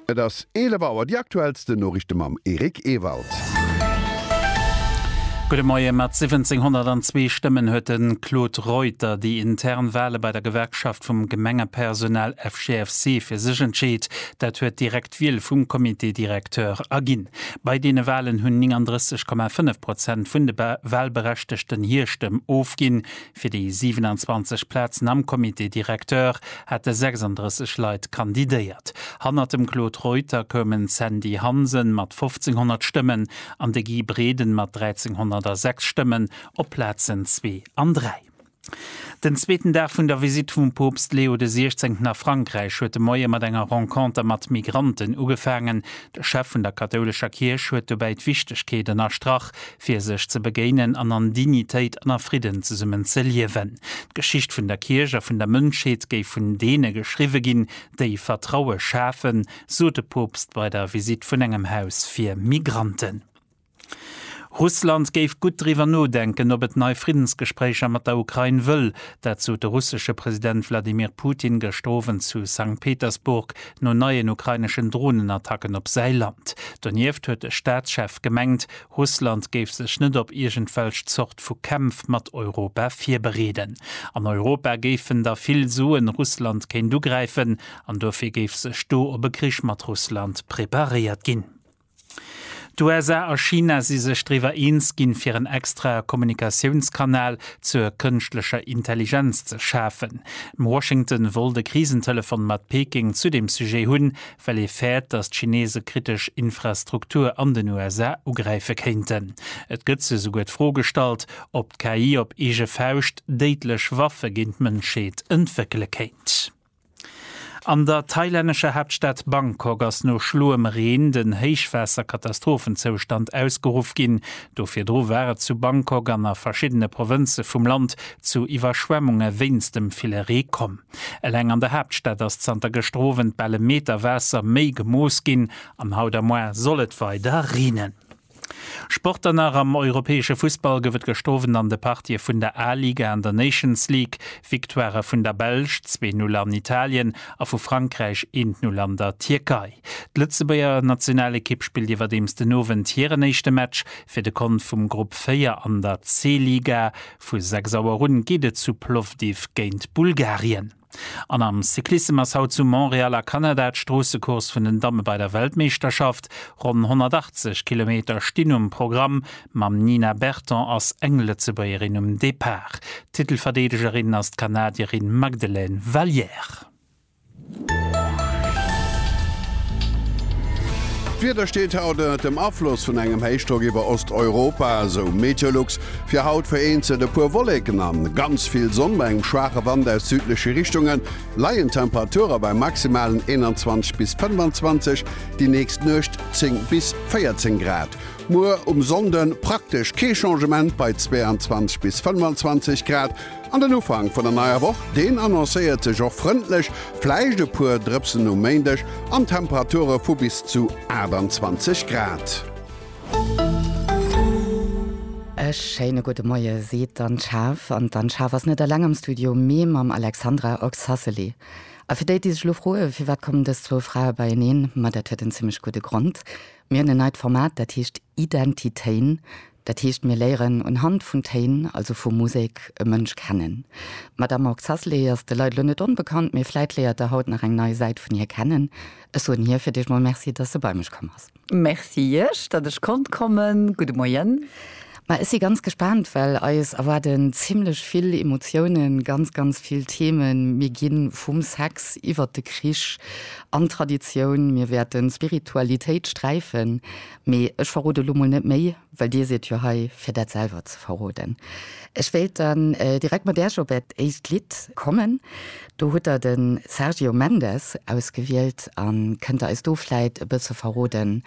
Et ass 11 Auer, déi aktuellsten Noriichte mam Eric Ewald. Gudde Moie, Mat 1702 Stëmmen huet de Claude Reuter déi intern Wale bei der Gewerkschaft vum Gemengepersonal FGFC fir sech entscheet. Dat huet direkt d'Wiel vum Comité directeur erginn. Bei deene Walen hunn 39,5 Prozent vun de Walberechtegten hir Stëmm ofginn, Fir déi 27 Plazen am Comité directeur hate 36 Leit kandidéiert. Hannert dem Claude Reuter koumen d'Sandy Hansen mat 1.500 Stëmmen an de Guy Breden mat 1.306 Stëmmen op d'Plazen zwee an dräi. Den zweeten Dag vun der Visitt vum Poopst Leo de 16 a Frankräich huet de Moie mat enger Renconter mat Migranten ugefaangen, De Chef vun der kathoulescher Kierch huet dobäi d'Wichtegkeet ënnerstrach, fir sech ze begéinen an an Dignitéit an a Fridden zesummen ze liewen. D'Geschicht vun der Kierch a vun der Mënschheet géif vun deene geschriwwe ginn, déi Vertraue schafen, sot de Poopst bei der Visitt vun engem Haus fir Migranten. Russland géif gutt driwwer nodenken, ob et nei Friddensgespréicher mat der Ukrain wëll. Dat sot de russesche President Wladimir Putin gëschter Owend zu Sankt Petersburg no neien ukraineschen Dronenattacken op säi Land. Donieft huet de Staatschef gemengt, Russland géif sech net op iergendwelch Zort vu Kämpf mat Europa virbereeden. An Europa géifen da vill soen, Russland kéint ugräifen an dofir géif sech do op e Krich mat Russland preparéiert ginn. D'USA a China si sech driwwer eens ginn, fir en extra Kommunikatiounskanal zur kënschtlecher Intelligenz ze schafen. Washington wollt e Krisentelefon mat Peking zu deem Sujet hunn, well ee fäert, datt d'Chinese kritesch Infrastruktur an den USA ugräife kéinten. Et gëtt sech esouguer d'Fro gestallt, ob d'KI op eege Fauscht déidlech Waffe géint d'Mënschheet entwéckele kéint. An der thailännescher Haaptstad Bangkok ass no schloem Reen den Héichwaasserkatastrophenzoustand ausgeruff ginn. Do virdru war et zu Bangkok an a verschiddene Provënze vum Land zu Iwwerschwemmunge wéinst dem ville Ree komm. Eleng an der Haaptstad ass zanter geschterowend bal e Meter Waasser méi gemooss ginn an haut am Moarn soll et weider reenen. Sport dann nach, Am europäesche Fussball gouf et gëscht Owend an de Partië vun der A-Liga an der Nations League Victoirë vun der Belsch, zwee Null an Italien, a vu Frankräich, eent Null an der Tierkei. D'Lëtzebuerger Nationalekipp spillt iwwerdeems den Owend hiren éischte Match fir de Kont vum Grupp 4 an der C-Liga. Vu 6 Auer un geet et zu Plovdiv géint Bulgarien. An am Cyclissem ass haut zu Montréal a Kanada d'Stroossecourse vun den Damme bei der Weltmeeschterschaft. Ronn 180 Kilometer stinn um Programm. Mam Nina Berton ass eng Lëtzebuergerin um Depart. Titelverdeedegerin ass d'Kanadierin Magdelaine Valliere. D'Wieder steet haut ënnert dem Afloss vun engem Héichdrock iwwer Osteuropa, esou Meteolux. Fir haut vereenzelt e puer Wolleken an ganz vill Sonn bei engem schwaache Wand aus südleche Richtunge leien d'Temperature bei maximalen 21 bis 25, déi nächst Nuecht 10 bis 14 Grad. Muer um Sonnde praktesch kee Changement bei 22 bis 25 Grad an den Ufank vun der neier Woch, deen annoncéiert sech och frëndlech, vläicht e puer Drëpsen um Méindeg an Temperature vu bis zu 28 Grad. E schéine gudde Moie seet d'Anne Schaaf. An d'Anne Schaaf ass net eleng am Studio, mee mam Alexandra Oxacelli. A fir déi, déi sech lo froe firwat kommen dës zwou Frae beieneen, ma dat huet en zimmlech gudde Grond, Mir hunn en neit Format, dat heescht Identitéin. Dat heescht, mir léieren unhand vun Téin, also vu Musek, e Mënsch kennen. D'Madame Oxacelli ass de Leit lo net onbekannt, mee vläit léiert der haut nach eng nei Säit vun hir kennen. Ech soen hir fir d'éischt mol Merci, datt se bei mech komm ass. Merci iech, datt ech konnt kommen. Gudde Moien. Ma ech si ganz gespaant, well eis erwaarden zimlech vill Emotiounen, ganz, ganz vill Themen. Mir ginn vum Sex iwwert de Krich an d'Traditioun, mir wäerten d'Spiritualitéit sträifen, mee ech verrode lo mol net méi, well dir sidd jo hei fir dat selwer ze verroden. Ech wéilt dann direkt mat Äerch op äert éischt Lidd kommen. Do hutt der den Sergio Mendes ausgewielt an kënnt der eis do vläit e bësse verroden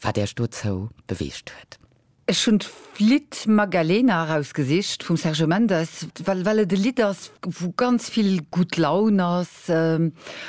wat Iech dozou beweegt huet? Ech hunn d'Lidd Magalena erausgesicht vum Sergio Mendes, well et e Lidd ass wou ganz vill gutt Laun ass.